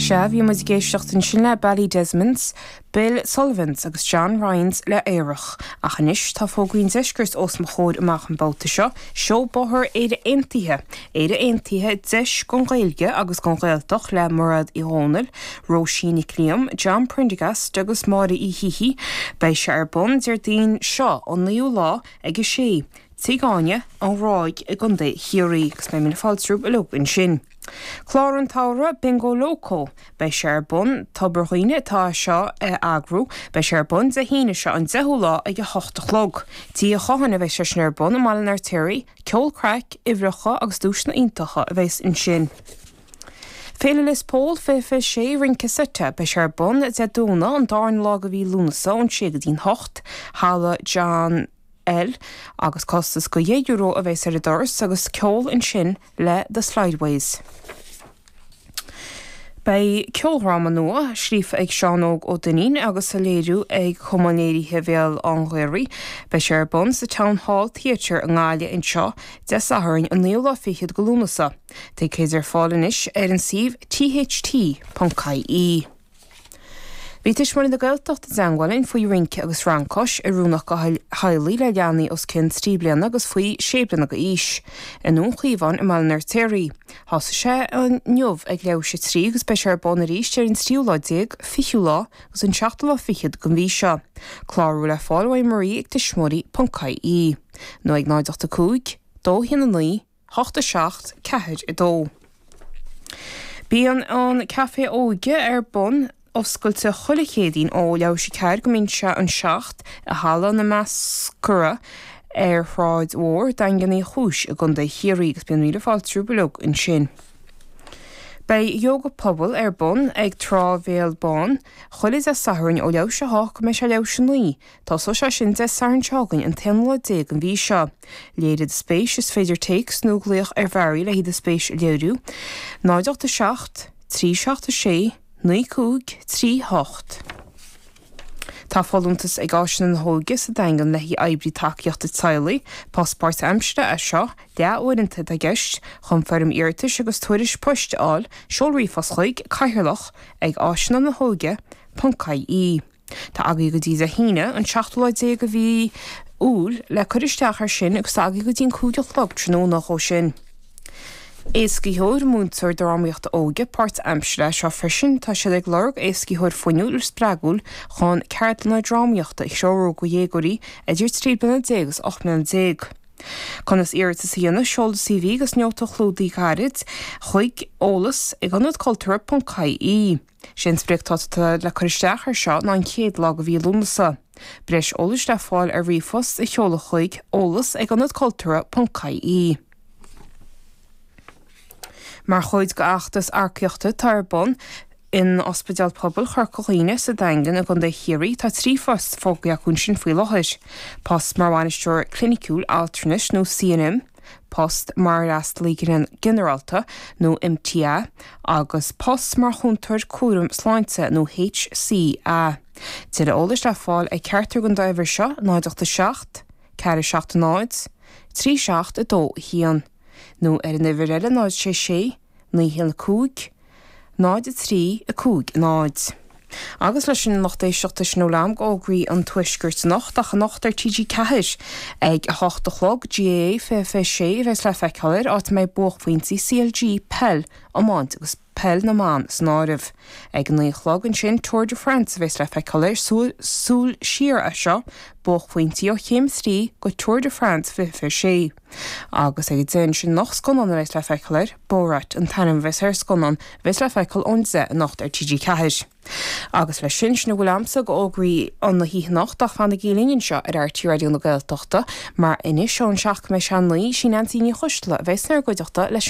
Sea, bhí muid ag éisteacht ansin le Barry Desmond's, Bill Sullivan's agus John Ryan's le Aerach. Ach anois, tá fógraí an Deiscirt os mo chomhair amach an babhta seo, Seó Bóthair Éire Aontaithe, Éire Aontaithe, deis don Ghaeilge agus don Ghaeltacht le Muiréad Uí Dhónaill, Róisín Nic Liam, John Prendergast agus Máire Uí Shíthigh. Beidh sé ar bun Déardaoin seo, an naoú lá, ag a sé. Tigh Áine, An Ghráig i gContae Chiarraí agus beidh míle fáilte romhaibh uilig ansin. Clár an tSamhraidh, Bingo Lócó! Beidh sé ar bun, Tobar Dhuibhne atá é seo a eagrú, beidh sé ar bun Dé hAoine seo an 10ú lá ag 8 a chlog. Tigh Uí Chatháin a bheidh sé sin ar bun i mBaile an Fheirtéaraigh. Ceol, craic, uimhreacha agus duaiseanna iontacha a bheidh ansin. Féile Lios Póil, 20, 26, Rince Seite, beidh sé ar bun Dé Domhnaigh an dárna lá de mhí Lúnasa ón 6 go dtí an 8. Halla John. Eoil agus costas de dheich euro a bheas ar an doras agus ceol ansin le The Slideways. Beidh ceoldhráma nua, scríofa ag Seán Óg Ó Duinnín agus á léiriú ag Cumann Léirithe Bhéal an Ghaorthaidh, beidh sé ar bun sa Town Hall Theatre i nGaillimh anseo Dé Sathairn an naoú lá fichead de Lúnasa. Ticéid ar fáil anois ar an suíomh tht.ie. Bhí Tuismitheoirí na Gaeltachta i dteangmháil linn faoi rince agus rann cois, oiriúnach do theaghlaigh le leanaí os cionn trí bliana agus faoi sé bliana d'aois i nDún Chaomháin i mBaile an Fheirtéaraigh. Thosaigh sé inniu ag leath théis a trí agus beidh sé ar bun arís ar an tríú lá déag, fichiú lá agus an seachtú lá fichead den mhí seo. Clárú le fáil ó Anne Marie ag tuismitheoirí.ie nó ag 085 219 hocht a seacht ceathair a dó. Bíonn an Caifé Óige ar bun, oscailte chuile Chéadaoin ó leath théis a ceathair go mbíonn sé an seacht, i Halla na Meascra ar Shráid Mhór Daingean Uí Chúis i gContae Chiarraí agus bíonn míle fáilte romhaibh uilig ansin. Beidh Yoga Pobail ar bun ag Trá Bhéal Bán chuile Dé Sathairn ó leath théis a hocht go mbeidh sé leath théis a naoi. Tosóidh sé sin Dé Sathairn seo chugainn, an t-aonú lá déag den mhí seo. Léirigh do spéis, is féidir téacs nó glaoch ar Mhary le haghaidh do spéis a léiriú, 0 8 7 3 7 6 9 5 3 8 Tá folúntas ag Áiseanna na hÓige sa Daingean le haghaidh oibrí tacaíochta teaghlaigh, post páirt-aimsire é seo, deá-uaireanta atá i gceist, chun foirm iarratais agus tuairisc poist a fháil seol ríomhphost chuig, Cathaoirleach, ag áiseanna na hóige, ponc, ie. Tá agaí go dtí Dé hAoine, an seachtú lá déag de mhí Iúil, le cur isteach air sin agus tá agaí go dtí an cúig a chlog tráthnóna dhó sin. Éascaitheoir, Múinteoir Drámaíochta Óige páirtaimseartha, seo freisin, tá siad ag lorg éascaitheoir fuinniúil spreagúil chun ceardlanna drámaíochta a threorú go dhéagóirí idir trí bliana déag is ocht mbliana déag. Conas iarratas a dhéanamh, Seol do CV agus nóta chlúdaigh gairid chuig, eolas, ag ionadculturtha.ie. Is é an sprioc atá tugtha le cur isteach air seo ná an chéad lá de mhí Lúnasa. Breis eolais le fáil ar ríomhphost a sheoladh chuig, eolas ag ionad cultúrtha ponc ie. Mar chuid d'fheachtas earcaíochta atá ar bun in Ospidéal Pobail Chorca Dhuibhne sa Daingean i gContae Chiarraí, tá trí phost fógartha acu ansin faoi láthair, post mar Bhainisteoir Cliniciúil Altranais nó CNM, post mar Fhreastalaí Ginearálta nó MTA agus post mar Chúntóir Cúraim Sláinte nó HCA. Tuilleadh eolais le fáil ach ceartú ag an dá uimhir seo, 087 470 3721 nó ar an uimhir eile 066 915 0350. Agus leis sin lucht éisteachta sin a bhfuil agam go fhógraí an Tuaiscirt anocht ach anocht ar TG4 ag 8 a chlog, GAA 2026 a bheas le feiceáil air, áit a mbeidh buaicphointí CLG, peil, iomáint agus peil na mban san áireamh. Ag 9 a chlog ansin Tour de France a bheas le feiceáil air, súil siar é seo, buaicphointí ó Chéim 3 go Tour de France 2026. Agus ag a 10 ansin anocht scannán a bheas le feiceáil air, Borat, an t-ainm a bheas ar an scannán a bheas le feiceáil ón 10 anocht ar TG4. Agus leis sin, sin a bhfuil agamsa go fhógraí na hoíche anocht ach fanaigí linn anseo ar RTÉ Raidió na Gaeltachta mar anois ón 7 go 9, sí Neansaí Ní Choisdealbha a bheas inár gcuideachta leis